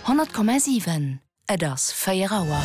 100,7 Et ass 4 Auer.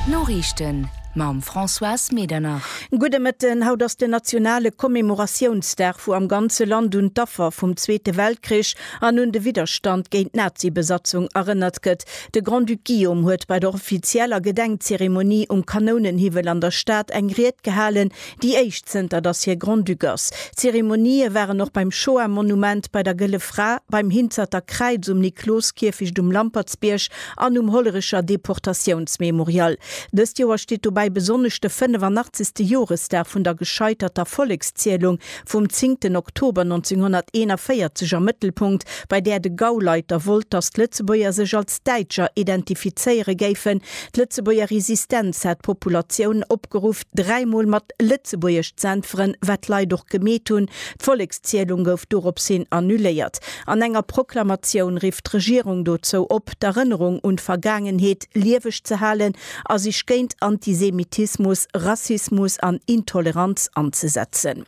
D'Noriichten mam Françoise Medernach. Gudde Mëtten. Haut ass den nationale Commemoratiounsdag, wou am ganze Land un d'Affer vum Zweete Weltkrich an un de Widderstand géint d'Nazi-Besatzung erënnert gëtt. De Grand-Duc Guillaume huet bei der offizieller Gedenkzeremonie um Kanounenhiwwel an der Stad eng Ried gehalen, Déi éischt zënter dass hie Grand-Duc ass. D'Zeremonië waren och beim Shoah-Monument, bei der Gëlle Fra, beim Hinzerter Kräiz, um Nikloskierfecht, um Lampertsbierg an um Hollerecher Deportatiounsmemorial. Dëst Joer steet dobäi besonnesch de 85. Joresdag vun der gescheiterter Vollekszielung vum 10 Oktober 1941 am Mëttelpunkt, bei där de Gauleiter wollt, dass d'Lëtzebuerger sech als Däitscher identifizéiere géifen. D'Lëtzebuerger Resistenz hat d'Populatioun opgeruff, Dräi Mol mat Lëtzebuergesch z'äntweren, wat d'Leit och gemeet hunn. D'Vollekszielung gouf doropshin annuléiert. An enger Proklamatioun rifft d'Regierung dozou op, d'Erënnerung un d'Vergaangenheet lieweg ze halen a sech géint Antisemitismus, Rassismus an Intoleranz anzesetzen.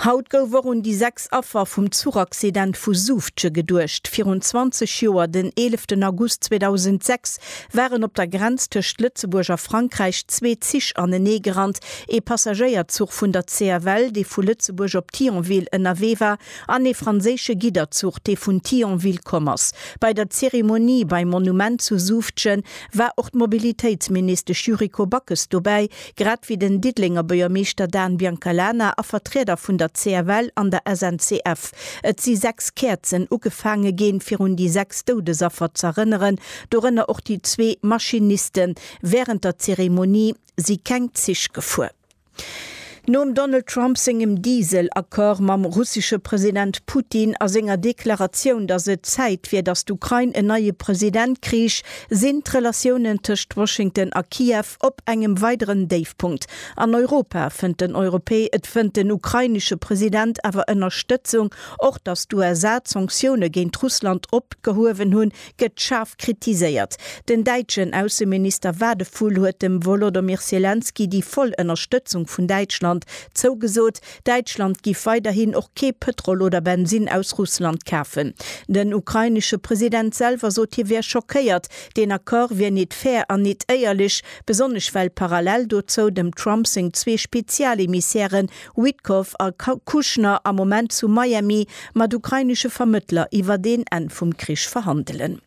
Haut gouf och un déi 6 Affer vum Zuchaccident vu Suufje geduecht. Virun 20 Joer, den 11 August 2006, waren op der Grenz tëscht Lëtzebuerg a Frankräich zwee Zich anenee gerannt, ee Passagéierzuch vun der CFL, dee vu Lëtzebuerg op Thionville ënnerwee war, an ee franséische Gidderzuch, dee vun Thionville komm ass. Bei der Zeremonie beim Monument zu Suufje war och d'Mobilitéitsministesch Yuriko Backes dobäi, Grad wéi den Diddelenger Buergermeeschter Dan Biancalana a Vertrieder vun der CFL an der SNCF. Et si 6 Käerzen ugefaange ginn, fir un déi 6 Doudesaffer z'erënneren, dorënner och déi zwee Maschinisten. Wärend der Zeremonie si keng Zich gefuer. Nom Donald Trump sengem Diesel-Accord mam russesche President Putin a senger Deklaratioun, datt et Zäit wier, datt d'Ukrain en neie President krich, sinn d'Relatiounen tëscht Washington a Kiew Op engem weideren Déifpunkt an Europa fënnt den Europä et fënnt den ukrainesche President awer Ënnerstëtzung. Och datt d'USA d'Sanktioune géint Russland opgehuewen hunn, gëtt schaarf kritiséiert. Den däitschen Ausseminister Wadephul huet dem Wolodomyr Selenskyj déi voll Ënnerstëtzung vun Däitschland zougesot. Däitschland giff weiderhin och kee Pëtrol oder Bensinn aus Russland kafen. Den ukrainesche President selwer sot hie wär schockéiert, deen Accord wier nit fair an nit éierlech, besonnesch well parallel dozou dem Trump seng zwee Spezialemissäre Witkoff a Kushner am Moment zu Miami mat ukrainesche Vermëttler iwwert een Enn vum Krich verhandelen.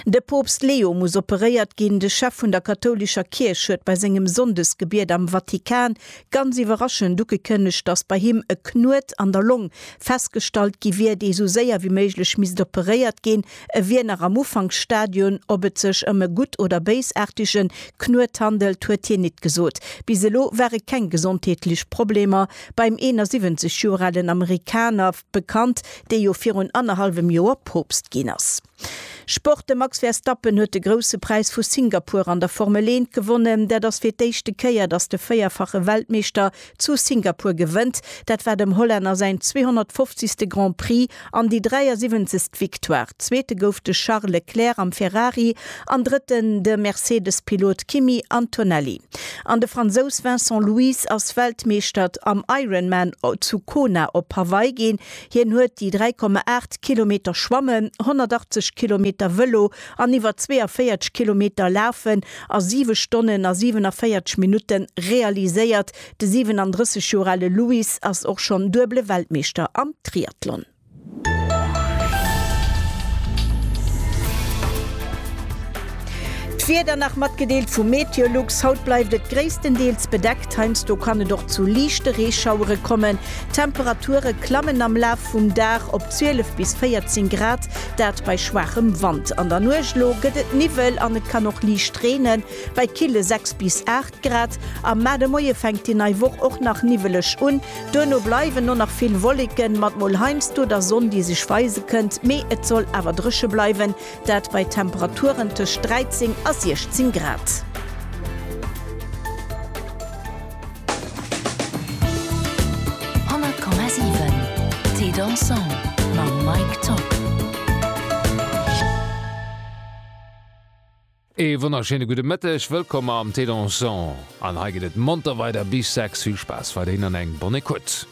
De Poopst Leo muss operéiert ginn. De Chef vun der kathoulescher Kierch huet bei sengem Sonndesgebiet am Vatikan ganz iwwerraschend ugekënnegt, datt bei him e Knuet an der Long festgestallt gi wier, dee sou séier wéi méiglech misst operéiert ginn. E wier nach am Ufanksstadion. Ob et sech ëm e gutt oder béisaartege Knuet handelt, huet hien nit gesot. Bis elo ware keng gesondheetlech Problemer beim 71 Joer alen Amerikaner. bekannt, dee jo virun annerhallwem Joer Poopst ginn ass. Sport, De Max Verstappen huet de Grousse Präis vu Singapur an der Formel Eent gewonnen. Dat ass fir d'éischte Kéier, datt de véierfache Weltmeeschter zu Singapur gewënnt. Dat war dem Hollänner säin 250. Grand Prix an déi 73. Victoire. Zweete gouf de Charles Leclerc am Ferrari. An Drëtten de Mercedes-Pilot Kimi Antonelli. An de Fransous Vincent Luis ass Weltmeeschtert am Ironman zu Kona op Hawaii ginn. Hien huet déi 3,8 Kilometer Schwammen, 180 Kilometer Vëlo an iwwer 42 Kilometer Lafen a 7 Stonnen a 47 Minutte realiséiert. De 37 Joer ale Luis ass och schonn duebele Weltmeeschter am Triathlon. D'Wieder nach matgedeelt vu Meteolux, Haut bleift et gréisstendeels bedeckt, heiansdo kann et och zu liichte Reeschauere kommen. D'Temperature klammen am Laf vum Dag op 12 bis 14 Grad, dat bei schwaachem Wand. An der Nuecht elo gëtt et Niwwel an et kann och liicht reenen, bei kille 6 bis 8. Grad. Am Maart e Moie fänkt déi nei Woch och nach niwweleg un, duerno bleiwen och nach vill Wolleken, mat mol heiansdo der Sonn, déi sech weise kënnt, mee et soll awer dréche bleiwen, dat bei Temperaturen tëscht 13 a 16 Grad. Ee wonnerschéine gudde Mëtteg, wëllkomm am Thé Dansant an hei geet et monter weider bis 6. Vill Spaass weiderhin an eng bonne écoute.